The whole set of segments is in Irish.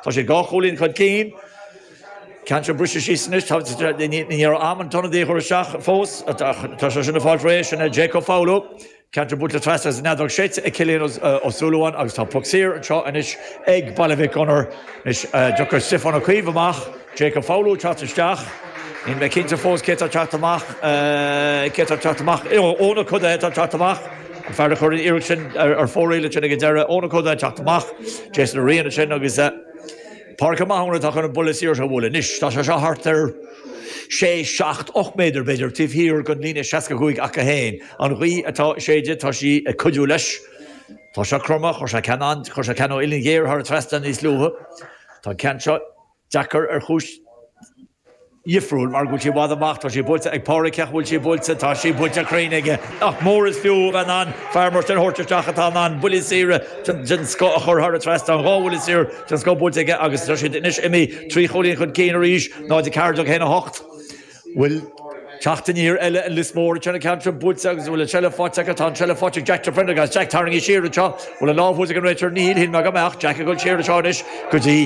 Tá sé dhá chúilín chun cinn. Ceann atá briste síos anois. Ní raibh am an t-ionadaí a thabhairt isteach fós. Tá sé sin ag fáil réidh. Sin é Jake Ó Foghlú. Ceann atá buailte trasna is an fheadóg séidte ag Cillian Ó Súilleabháin agus tá puc saor anseo anois ag Baile Mhic Gonair. Anois, tiocfaidh Stiofán Ó Caoimh amach. Jake Ó Foghlú ag teacht isteach. Níl mé cinnte fós cé atá ag teacht amach, cé atá ag teacht amach, Eoin, Eoin Ó Cuidithe atá ag teacht amach, an fear a chuir an iarracht sin ar fóraoil ansin ag an deireadh, Eoin Ó Cuidithe ag teacht amach, Jason Ó Riain ansin agus eh Pádraig Ó Mathúna atá chun an buille saor seo a bhualadh anois, tá sé seo thart ar sé, seacht, ocht méadar b'fhéidir taobh thiar den líne seasca cúig acu féin, an ghaoth atá ag séideadh tá sí ag cuidiú leis, tá sé cromtha, chuir sé ceann an, chuir sé ceann ó uillinn ghéar thar an trasnán níos luaithe, tá an ceann seo. deacair ar chúis dhifriúil, mar go bhfuil sí i bhfad amach, tá sí buailte ag Pádraig, ach an bhfuil sí buailte, tá sí buailte cruinn aige. Nach mór is fiú a bheith in ann fear mar sin a thabhairt isteach atá in ann buillí saora den scoth a chur thar an trasnán, dhá bhuille saor den scoth buailte aige agus tá siad anois imithe trí chúilín chun cinn arís, 0:14, 1:08. bhfuil teacht aniar eile i Lios Mór, anseo an ceann atá buailte agus an bhfuil an seilbh faighte acu, tá an seilbh faighte ag Jack de Prendergast, Jack tarraingthe siar anseo, bhfuil an lámh thuas ag an Réiteoir, níl, shíl mé go mbeadh, Jack ag dul siar anseo anois go dtí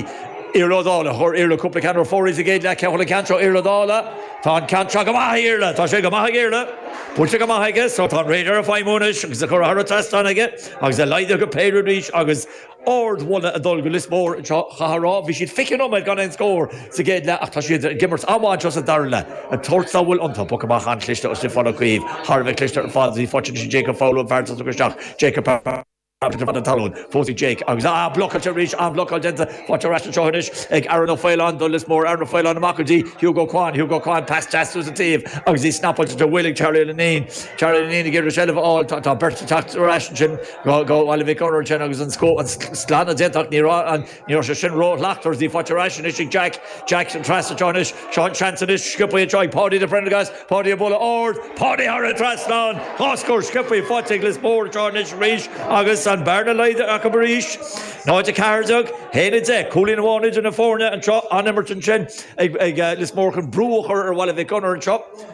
Iarla Ó Dálaigh, chuir Iarla cúpla ceann ar fóraoil sa gcéad leath, cé a thug an ceann seo, Iarla Ó Dálaigh, tá an ceann seo go maith ag Iarla, tá sé go maith ag Iarla, buailte go maith aige, so tá an radar ag feidhmiú anois agus í curtha thar an trasnán aige agus é laghdaithe go péire arís agus. Ardmholadh ag dul go Lios Mór anseo chaithfeá a rá. Bhí siad 20 nóiméad gan aon scór sa gcéad leath ach tá siad ag imirt an-mhaith anseo sa dara leath. Ag tabhairt a bhfuil iontu, poc amach an-chliste ó Stiofán Ó Caoimh, thar a bheith cliste ar fad. Bhí fochill sin Jake Ó Foghlú an fear a tháinig isteach, Jacob Parkinson ar feadh na talún. Thosaigh Jake agus ah, blocáilte arís, an-bhlocáil déanta. Faighte ar ais anseo anois ag Aaron Ó Faoláin do Lios Mór. Aaron Ó Faoláin amach go dtí Hugo Quann. Hugo Quann, pas deas suas an taobh agus í snappáilte de mhaoil ag Charlie Lineen. Charlie Lineen ag iarraidh seilbh a fháil. Tá beirt ag teacht ar ais ansin. Bhaile Mhic Gonair ansin agus an glanadh déanta ach, ní raibh sé sin ró-shlachtmhar. Í faighte ar ais anois ag Jack, Jack an trasna seo anois, seo an seans anois, sciobtha anseo ag Paudie de Prendergast, Paudie ag bualadh ard, Paudie thar an trasnán, dhá scór sciobtha faighte ag Lios Mór anseo anois arís agus an bearna laghdaithe acu arís, 0, 14, 1, 10. Cúilín amháin idir na foirne anseo, an-imirt ansin ag Lios Mór chun brú a chur ar Bhaile Mhic Gonair anseo.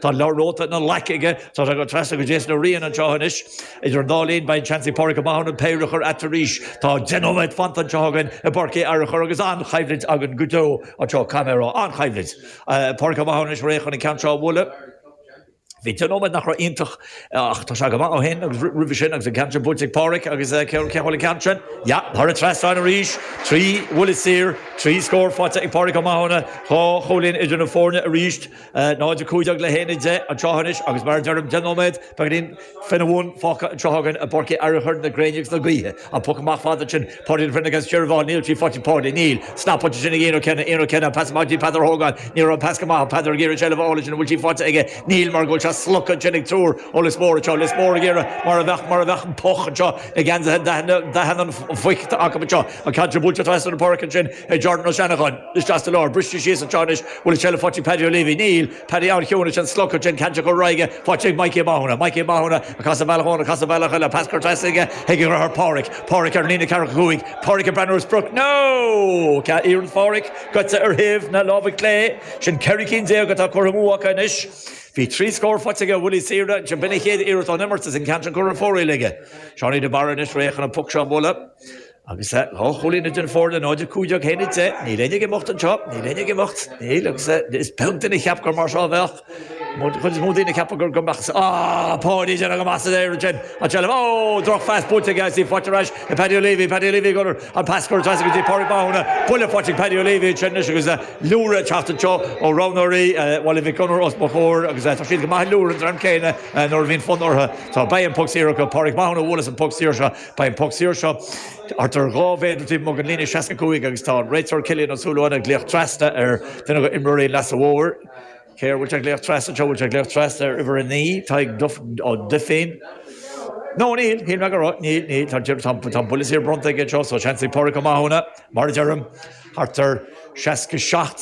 Tá an leabhar nótaí ina ghlaic aige, tá sé ag dul trasna go Jason Ó Riain anseo anois. Idir an dá linn, beidh seans ag Pádraig Ó Mathúna péire a chur ann arís. Tá deich nóiméad fanta anseo againn i bPáirc Uí Fhearchair agus an-choimhlint againn go deo anseo, caithfidh mé a rá. An-choimhlint. Pádraig Ó Mathúna anois réidh chun an ceann seo a bhualadh. Bhí deich nóiméad nach raibh iontach ach tá sé go maith ó shin agus roimhe sin agus an ceann sin buailte ag Pádraig agus cé a bhuail an ceann sin? Yeah, thar an trasnán arís. Trí bhuille saor, trí scór faighte ag Pádraig Ó Mathúna, dhá chúilín idir na foirne arís. 0:15 le 1:10 an tráth anois agus mar a deirim deich nóiméad beag in fin a bhun fágtha an tráth againn i bPáirc Uí Fhearchair na gréine agus na gaoithe an poc amach fada ansin Páidí an fin against Jerry Vaughan níl trí phointe Páidí níl sna pointe sin ag Ian Ó Cionnaith Ian Ó Cionnaith an pas amach go dtí Peadar Hogan ní raibh an pas go maith ach Peadar ag iarraidh seilbh a fháil ansin an bhfuil sí faighte aige níl mar go bhfuil sé slogtha ansin ag triúr ó Lios Mór anseo Lios Mór ag iarraidh mar a bheadh mar a bheadh an puc anseo na geansaithe daithin an phoic acu anseo an ceann seo buailte trasna an pháirc ansin ag Jordan Ó Seancháin. Isteach sa lár, briste síos anseo anois, bhfuil seilbh ag Paddy Leavey, Níl, Paddy ann, chiúin is an slogfad sé an caint a chur ar aghaidh, Pháidí ag Maidhcí Mathúna, Maidhcí Mathúna ag casadh bealach amháin, ag casadh bealach eile, pas curtha trasna aige chuig a dhriotháir Páraic, Páraic ar an líne ceathracha cúig, Páraic ag breathnú ar sprioc, nó! Tá iarracht Pháraic gaibhte ar thaobh na láimhe clé, sin ceithre cinn déag atá curtha amú acu anois. Bhí trí scór faighte aige ó bhuillí saora, ansin b'in a chéad iarracht ón imirt is an ceann sin curtha ar fóraoil aige. Seánie de Barra anois réidh chun an poc seo a bhualadh. Agus tá dhá chúilín idir na foirne 0-15 le 1-10. Níl éinne ag imeacht anseo, níl éinne ag imeacht, níl, agus is beag duine a cheap gur mar seo a bheadh. An chuid is mó daoine ag ceapadh gur go mbeadh, á, Páidí ag déanamh go maith san aer ansin, an tseilbh, ó, drochphas buailte aige, is í faighte ar ais ag Paddy Leavey, Paddy Leavey ag cur an pas gearr trasna go dtí Pádraig Mathúna, buille faighte ag Paddy Leavey ansin anois agus liúireach ag teacht anseo ó roghnóirí Bhaile Mhic Gonair os mo chomhair agus tá siad go maith ag liúireach an dream céanna nuair a bhíonn fonn orthu. Tá, beidh an poc saor acu, Pádraig Mathúna a bhuailfeas an poc saor seo. Beidh an poc saor seo thart ar dhá mhéadar taobh amuigh den líne 65 agus tá an réiteoir Cillian Ó Súilleabháin ag glaoch trasna ar dhuine d'imreoirí an Leasa Mhóir. Cé air a bhfuil sé ag glaoch trasna anseo? Bhfuil sé ag glaoch trasna ar uimhir a naoi, Tadhg Ó Duifín? No, níl, shíl mé go raibh. Níl, níl, tá, tá, tá an buille saor bronnta aige anseo, so seans ag Pádraig Ó Mathúna, mar a deirim, thart ar 67.